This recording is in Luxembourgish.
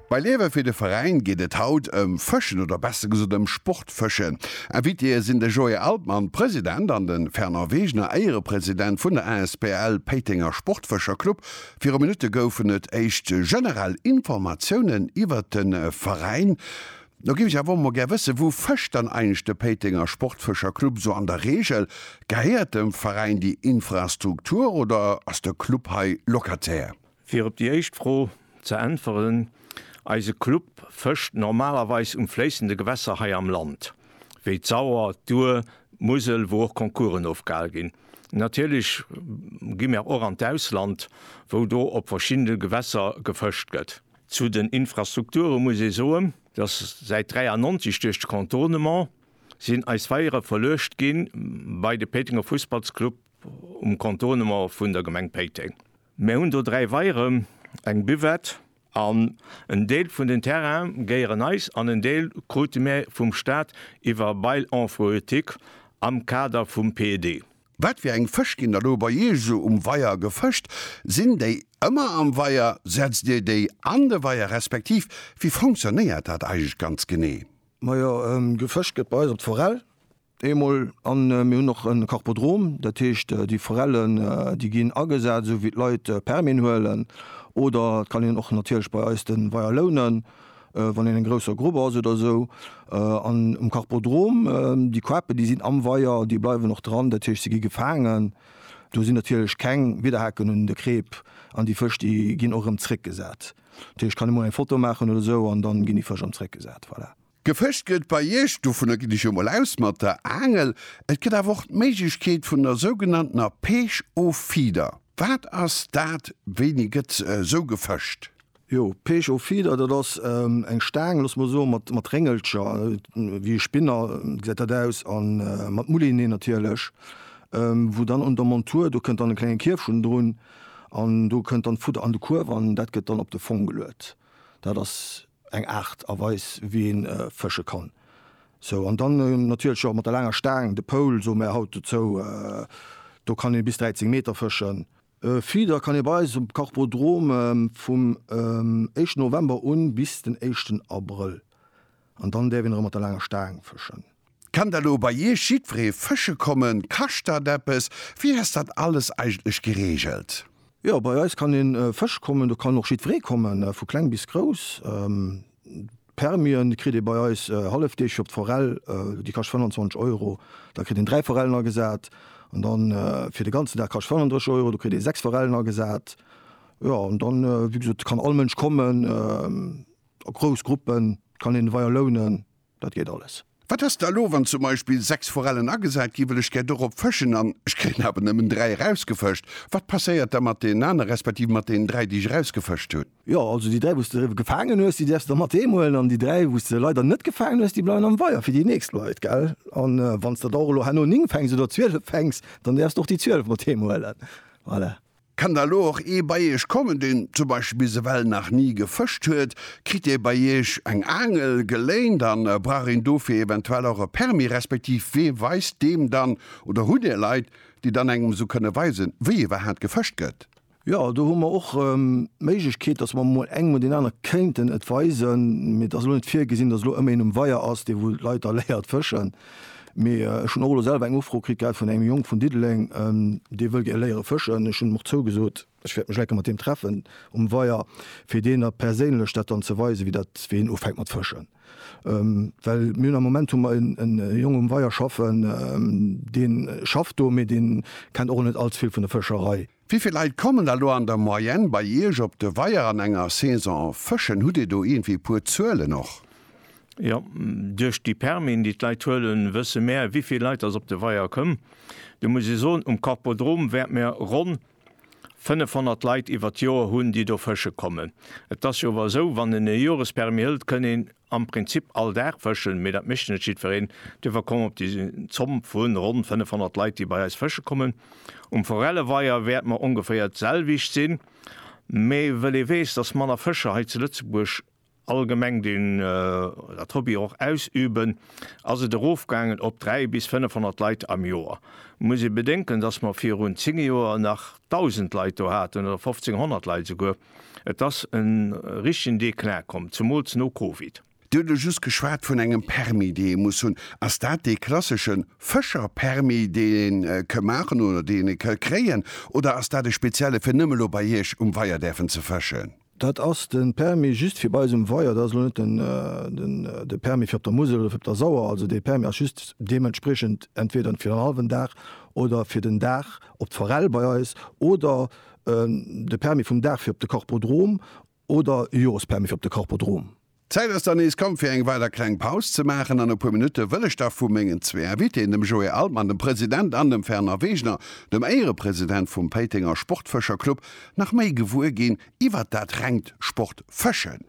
Bei Liewe fir de Veräin geet et haut ëm Fëschen oder besser gesot ëm Sportfëschen. Invitéë sinn de Joé Altmann, President, an de Fernand Wegener, Éierepresident vun der asbl Péitenger Sportfëscher Club. Viru Minutte goufen et éischt generell Informatiounen iwwert de Veräin. Lo géif ech awer och mol gär wëssen, Wou fëscht dann eigentlech de Péitenger Sportfëscher Club esou an der Reegel? Gehéiert dem Veräin déi Infrastruktur oder ass de Club hei Locataire? Fir op déi éischt Fro ze äntweren, Eise Club fëscht normalerweis um fléissende Gewässer hei am Land, wéi d'Sauer, d'Our, d'Musel, wou och Concoursen ofgehal ginn. Natierlech gi mir och an d'Ausland, wou do op verschiddene Gewässer gefëscht gëtt. Zu den Infrastrukture muss ee soen, dass säit 93 duerch de Contournement sinn eis Weiere verluecht gi bei de Péitenger Fussballsclub um Contournement vun der Gemeng Péiteng. Mär hunn do dräi Weiere, eng Buvette an en Deel vun den Terraine gehéieren eis an en Deel krute mär vum Staat iwwer Bail emprueutique am Kader vum PED. Wat fir eng Fësch ginn da lo bei Iech esou um Weier gefëscht? Sinn déi ëmmer am Weier? Setzt Dir déi an de Weier respektiv wéi fonctionnéiert dat eigentlech ganz genee? Majo, gefëscht gëtt bei eis op d'Forell. Eemol, a mir hunn och e Karpodrom, dat heescht déi Forellen, déi ginn agesat, esou wéi d'Leit Permien huelen. Oder et kann een och natierlech bei eis de Weier lounen, wann een eng grousser Grupp ass oder esou. An um Karpodrom, déi Koape, déi sinn am Weier, déi bleiwen och dran, dat heescht se gi gefaangen. Do sinn natierlech keng Widerhaken un de Kreep an déi Fësch, déi ginn och erëm zréckgesat. Dat heescht, kann ee mol eng Foto maachen oder esou an da ginn déi Fësch erëm zréckgesat. Voilà. Gefëscht gëtt bei Iech, dovunner ginn ech jo mol aus, mat der Aangel. Et gëtt awer och d'Méiglechkeet vun der sougenanntener Pêche au Feeder. Wat ass dat? Wéini gëtt sou gefëscht? Jo, Pêche au Feeder, dat ass eng Staang, loosse mer soen, mat Réngelcher, wéi e Spinner gesäit dat aus, a mat Moulinee natierlech, wou dann un der Montur, do kënnt dann e klenge Kierfch unnendrun an do kënnt dann d'Fudder an de Kuerf an dat gëtt dann op de Fong geluet. Dat ass Eng Aart a Weis wéi een fësche kann. Sou an dann natierlech och mat der laanger Staang, de Pole soe mär haut dozou. Do kann ee bis 13 Meter fëschen. E Feeder kann ee bei eis um Kachbodrom vum éischten November un bis den éischten Abrëll an dann däerf een erëm mat der laanger Staang fëschen. Kann da lo bei iech jiddweree fësche kommen? Kascht dat eppes? Wéi ass dat alles eigentlech gereegelt? Jo, bei eis kann een Fësch kommen. Do kann och jiddweree kommen, vu kleng bis grouss. Permien kritt ee bei eis hallefdeeg op d'Forell, déi kascht 25 Euro. Da kritt een dräi Forellen agesat. An da fir de ganzen Dag kascht 35 Euro, do kritt ee sechs Forellen agesat. Jo, an dann, wéi gesot, kann all Mënsch kommen, a grouss Gruppen kann een d'Weier lounen. Dat geet alles. Wat ass da elo, wann zum Beispill 6 Forellen agesat ginn, well ech gär dorop fëschen an ech kréien awer nëmmen 3 erausgefëscht? Wat passéiert da mat deenen anere respektiv mat deenen 3, déi ech erausgefëscht hunn? Jo, also déi 3, wou s de gefaangen hues, déi däerfs de da mat heem huelen an déi 3, wou s de leider net gefaangen hues, déi bleiwen am Weier fir déi nächst Leit, gell? A wann s de da och elo herno 9 fänks oder 12 fänks, dann däerfs de och déi 12 mat heem huelen. Voilà. Kann da lo och ee bei iech kommen deen zum Beispill bis ewell nach ni gefëscht huet? Kritt dee bei iech eng Aangel geléint a brauch een dofir eventuell och e Permis? Respektiv wee weist deem dann? Oder hutt dir Leit déi dann engem esou kënne weisen wéi iwwerhaat gefëscht gëtt? Jo, do hu mer och d'Méiglechkeet, dass mer mol engem oder deen anere kéinten et weisen, mee et ass elo net virgesinn, dass elo ëmmer een um Weier ass dee wou d'Leit da léiert fëschen. Mee ech hunn och elo selwer eng Ufro kritt gehat vun engem Jong vun Diddeleng, dee wëll gär léiere fëschen. Ech hunn him och zougesot, ech wäert mech enke mat him treffen um Weier, fir deen der perséinlech dat dann ze weisen, wéi dat, wéi een ufänkt mat fëschen. Well mir hunn am Moment hu mer en Jong um Weier schaffen, dee schafft do, mee deen kennt och net allze vill vun der Fëscherei. Wéi vill Leit kommen da lo an der Moyenne bei Iech op de Weier an enger Saison fëschen? Hutt Dir do iergendwéi e puer Zuelen och? Jo, duerch déi Permisen, déi d'Leit huelen, wësse mär, wéi vill Leit datt op de Weier kommen. Do muss ee soen, um Korpodrom wäerte mir ronn 500 Leit iwwert d'Joer hunn, déi do fësche kommen. Et ass jo awer esou, wann een e Jorespermis hëlt, kënn een am Prinzip all Dag fëschen, mee dat mécht net jiddwereen, duerfir komm op déi Zomm vu ronn 500 Leit, déi bei eis fësche kommen. Um Forelleweier wäerte mer ongeféier d'selwecht sinn, mee wëll ee weess, dass manner Fëscher hei zu Lëtzebuerg allgemeng den dat Hobby och ausüben, ass et erofgaangen op 3 bis 500 Leit am Joer. Muss ee bedenken, dass mer virun 10 Joer nach 1.000 Leit do haten oder 1.500 Leit esouguer, Et ass e richtegen Declin komm, zemools no Covid. Dir hutt elo just geschwat vun engem Permis, dee ee muss hunn. Ass dat dee klassesche Fëscher-Permis, deen een ke maachen oder deen ee ke kréien, oder ass dat e spezielle fir nëmme lo bei Iech um Weier däerfen ze fëschen? Dat ass de Permis just fir bei eis um Weier. Dat ass elo net de Permis fir op der Musel oder fir op der Sauer. Also dee Permis ass just deementspriechend entweder fir en hallwen Dag oder fir den Dag op d'Forell bei eis oder De Permis vum Dag fir op de Korpodrom oder e Jorespermis fir op de Korpodrom. D'Zäit ass dann nees komm fir eng weider kleng Paus ze maachen an e puer Minutte wëll ech da vu mengen zwee Invitéen, dem Joé Altmann, dem President, an dem Fernand Wegener, dem Éierepresident vum Péitenger Sportfëscherclub, nach méi gewuer ginn iwwert dat rengt Sportfëschen.